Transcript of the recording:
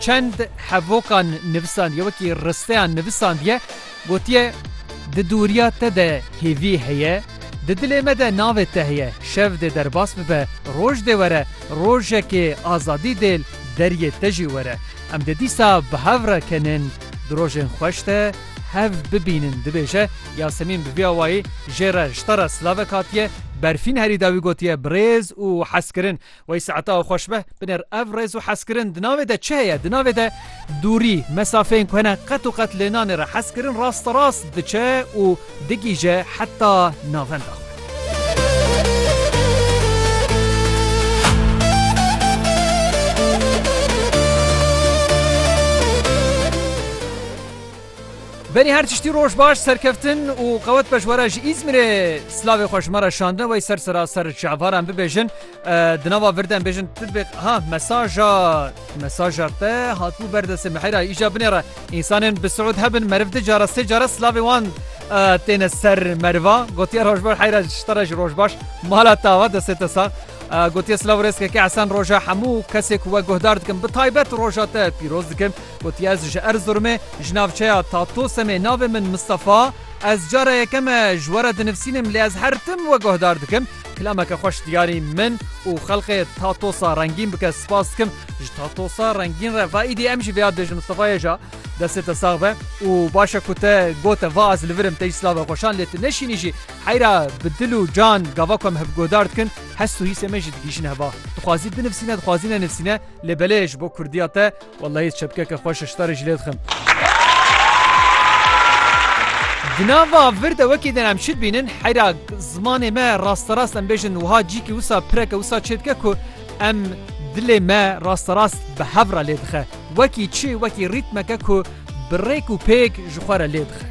Çend hevokan nivisandiye, wekî risteyan nivisandiye, gotiye, Di dûriya te de hêvî heye, di dilê me de navê te heye, şev dê derbas bibe, roj dê were, rojekê azadî dê li deriyê te jî were. Em dê dîsa bi hev re kenên di rojên xweş de hev bibînin, dibêje Yasemîn bi vî awayî jê re ji te re silavek hatiye berfîn herî dawî gotiye, Birêz û hezkirin Wey saeta xweş be binêr. Ev rêz û hezkirin di navê de çi heye? Di navê de dûrî, mesafeyên ku hene qet û qet lê nanê re hezkirin rasterast diçe û digihîje heta navenda xwe. Berî her tiştî roj baş, serkeftin û qewet be ji we re ji Îzmîrê. Silavê xwe ji me re şandine wey ser seraser çavaran bibêjin. Di nava vir de em bêjin tu dibê ha mesaja mesaja te hatibû ber destê Mihêra îja binê re. Însanên bi siûd hebin meriv du cara sê cara silavê wan têne ser meriva. Gotiye roj baş heyra ji te re jî roj baş. Mala tawa destê te sax. Gotiye silav û rêz keke Esen roja hemû kesê ku we guhdar dikim bi taybet roja te pîroz dikim. Got ez ji Erzurumê ji navçeya Tatosemê navê min Mistefa, ez cara yekeme ji we re dinivsînim lê ez her tim we guhdar dikim, kilameke xweş diyarî min û xelqê Tatosa rengîn bike spas dikim ji Tatosa rengîn re va îdî em jî vêya dibêjin Mistefa yê ja destê te sax be û baş e ku te gote va ez li vir im te jî silave xweşan lê tu neşînî jî heyra bi dil û can gava ku em hev guhdar dikin hest û hîsê me jî digihîjin heva dixwazî binivsîne dixwazî nenivsîne lê belê ji bo kurdiya te Wellahî çepkeke xweş e ji te re jî lê dixim. Di nav va vir de wekî din em çi dibînin heyra zimanê me rasterast em bêjin wiha cîkî wisa pireke wisa çê dike ku em dilê me rasterast bi hev re lê dixe wekî çi wekî rîtmeke ku bi rêk û pêk ji xwe re lê dixe.